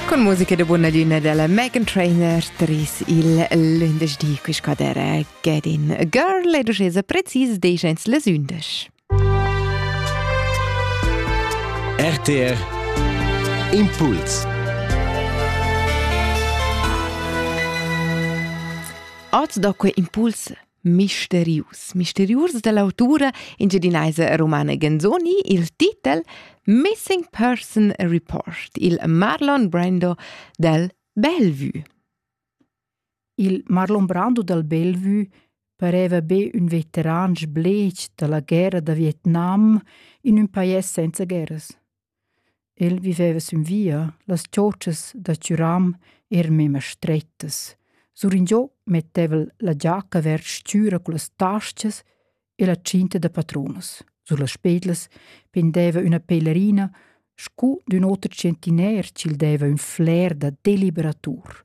Con musica de buona luna della Megan Trainer tris il lündeschdi qui scadere get in girl e ducesa precis decents les undesch. RTR Impuls Oz da que impuls Misterius. Misterius dell'autura engiadinaisa romana Ganzoni, il titel Missing Person Report, il Marlon Brando del Bellevue. Il Marlon Brando del Bellevue pareva be ün veteran sblech dalla guerra da Vietnam in ün pajais senza guerras. El viveva sün via, las chotschas da chüram eran memma strettas. Suringiò metteva'l la giacca vers stüra cullas tastas e la tschinta da patrunas. Sur las pedlas pendeva üna pelerina scu d'ün oter tschentiner chi'l deva ün fler da deliberatur.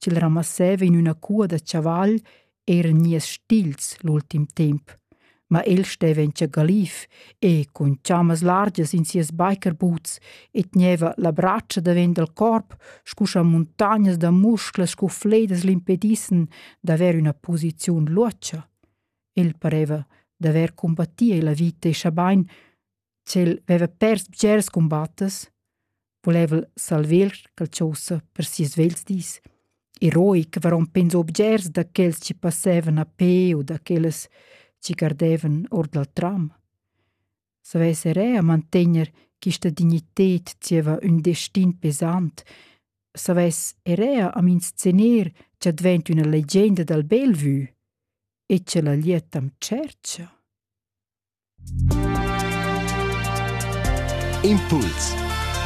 ch'el ramasseva in üna cua da chaval eir nies stils l'ultim temp. Ma el steva in tschagalif e cun chammas largias in sias biker-boots e tgneva la bratscha davent dal corp scu scha muntagnas da musclas scu fledas l'impedissen d'avair üna posiziun luotscha. El pareva d'avair cumbattì la vita e schabain ch'el veva pers bgers cumbattas, volevel salver quel chosa per sis vels dis e roi che varon pens objects da quels chi passevan a pe u da quellas chi gardevan or dal tram. Savess era mantegner quista dignited zieva ün destin pesant, savess era am inscener cha dvent üna legenda dal Bellevue e cha la lietam tschercha. Impuls